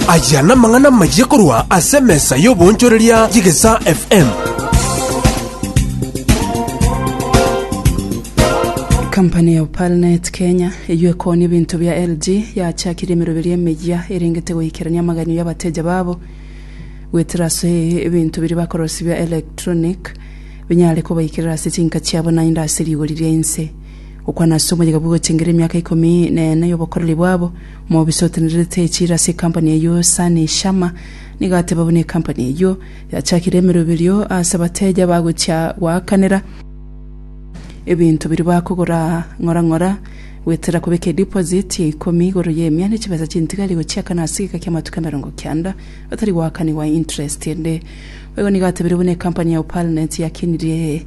Aya namang'ana amayia korwa ase emesa y'oboonchoreria y'egesaa FM. Kampani ya Opalnet Kenya, eyio ekooni ebinto bia LG, yachakirie emeroberio emeyia erengete goikerania amaganyo y'abateja babo goetera ase ebinto biria bakorosia bia electronic binyare kobaikerera ase chinka chiabo naende ase rigori ri'ense. Gokwana ase omoyega bw'ogotengera emiaka ikomi na ene y'obokoreri bwabo, omobisa otenererete echiro ase ekampani eyio Sani Sharma nigo ateba buna ekampani eyio yachakire emeroberio ase abateja bagochia goakanera ebinto biria bakogora ng'ora ng'ora goetera kobeka ediposit ya ikomi igoro y'emia ne chibesa chintigari gochiakana ase egeka ki'amatuko emerongo kianda batari goakanigwa interest ende. Boigo nigo atebire buna ekampani ya Opalnet yakenirie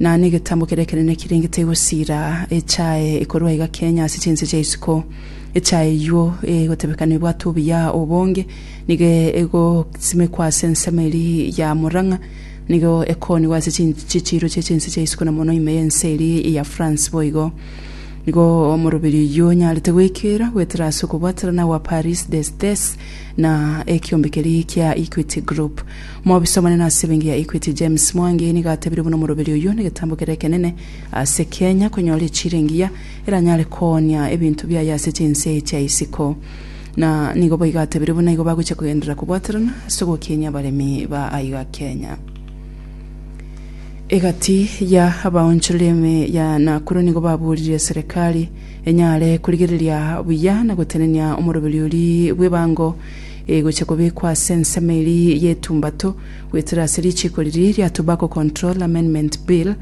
Na negetambo keria ekenene kirenge tegosiira echae ekorwa iga kenya ase chinse chia isiko. Echae eyio egotebeka nebwate obuya obonge, nigo egosimekwa ase ensemo eria ya Murang'a. Nigo ekoonigwa ase chichiiro chie chinse chia isiko na mono ime y'ense eria ya France boigo. Nigo omoroberi oyio onyarete goikeera goetera ase okobwaterana gwa Paris des Des na ekiombe keria kia Equity Group. Mobisomane nase ebenki ya Equity James Mwangi nigo atebirie buna omoroberi oyio negetambo kere ekenene ase Kenya konyora echira engiya eranyare koonia ebinto biaye ase chinse chia isiko na nigo boigo atebirie buna igo bagochia kogenderera kobwaterana ase ogokinyia abaremi ba aiga Kenya. Egati ya abaonchoreri ime ya Nakuru nigo baburirie serekari enyare korigereria buya na gotenenia omoroberi oria bw'ebango egochia kobekwa ase ensemo eria y'etumbato goetera ase richiiko riria ria Tobacco Control Amendment Bill,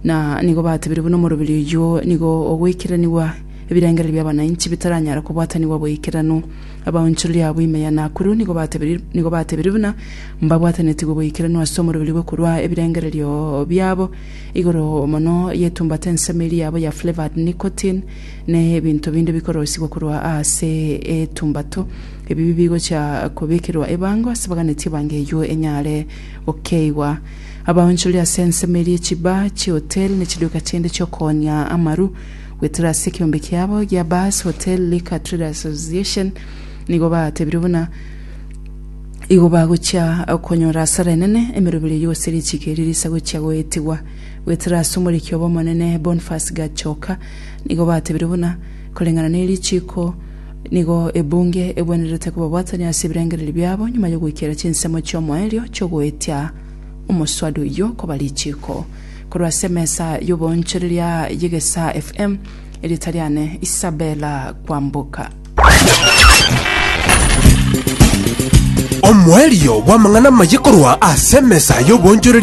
na nigo batebirie buna omoroberi oyio nigo ogweikeraniwa ebirengererio bi'abananchi bitaranyara kobwatanigwa boikeranu. Abaonchoreria abwo ime ya Nakuru nigo batebirie nigo batebirie buna mbabwatanetigwe boikeranu ase omoroberi bwe korua ebirengererio biabo igoro mono y'etumbato ensemo eria yabo ya Flavoured Nicotine, ne ebinto binde bikoroisigwa korwa ase etumbato, ebi bigochia kobekerwa ebango ase baganetie ebango eyio enyare gokeigwa. Abaonchoreri ase ensemo eria echiba chi'ehoteli ne chiduka chinde chi'okooonia amaru goetera ase ekeombe kiabo gia Bars, Hotel, Liquor Traders Association nigo batebirie buna igo bagochia konyora asara enene emeroberi eyio gose richiiki erio risagochia goetigwa goetera ase omoriki obo omonene Bonface Gachoka Nigo batebirie buna koreng'ana ne richiiko nigo ebunge egwenerete kobabwatania ase ebirengererio biabo nyuma y'ogoikera chinsemo chi'omoerio chi'ogoetia omoswadi oyio koba richiiko. Korwa ase emesa y'oboonchoreria y'Egesaa FM, erieta riane Isabella Kwamboka. Omoerio bw'amang'ana amaye korwa ase emesa y'oboonchoreria.